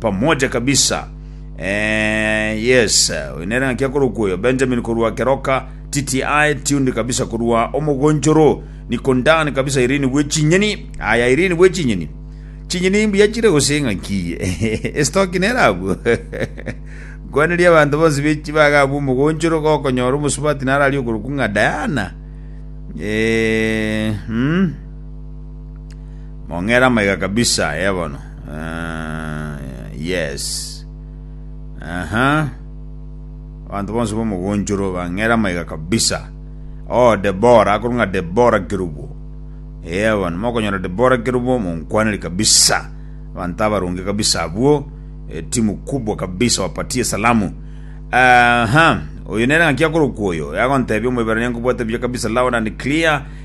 Pamoja kabisa. Eh, yes, oyo nere ng'aki akorokwa oyo, Benjamin korwa Keroka, TTI, tuned kabisa korwa Omogonchoro, Nikondan kabisa Irene bwe chinyeni, aya Irene bwe chinyeni. Chinyeni mbuya chire gose ng'aki, estoki nere abwo. Nkwaneria abanto bonsi bechi bagabwa Omogonchoro gokonyora omosubati nararia okorokwa ng'a Diana. Eh, mm. Mong'ere amaiga kabisa eh, bono. Ah, yes. Aha. Abanto bonsi bomogonchoro bang'ere amaiga kabisa. Oh, Debora, akorwa ng'a Debora Kerubo. Eh, bono mokonyora Debora Kerubo monkwaneri kabisa. Abanto abaronge kabisa abwo. Eh, timu kubwa kabisa wapatie salamu. Aha. Oyo nere ng'aki akorokwa oyo. Yagontebia omoiberania nkobwate buya kabisa loud and clear.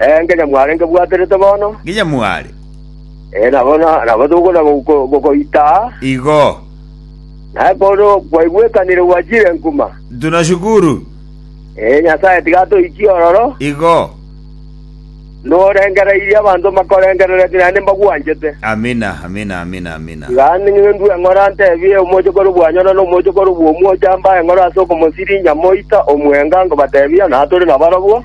Ee, nginya mware ngebwaterete bono. Nginya mware. Ee, na bono nabo togokwana go- go- gokoita aa. Igo. Naye bono kwaigwekanire gwachire nkuma. Tunashukuru. Ee, Nyasae tiga atoikie ororo. Igo. Norengereirie abanto mbakorengerereti naende mbagwanchete. Amina, amina, amina, amina. Tiga ning'e ndue ng'ora ntebie omochokoro bwanyora na omochokoro bw'omwocha mbae ng'ora ase okomosirinya moita omwenga ngobatebia natore nabarobwo.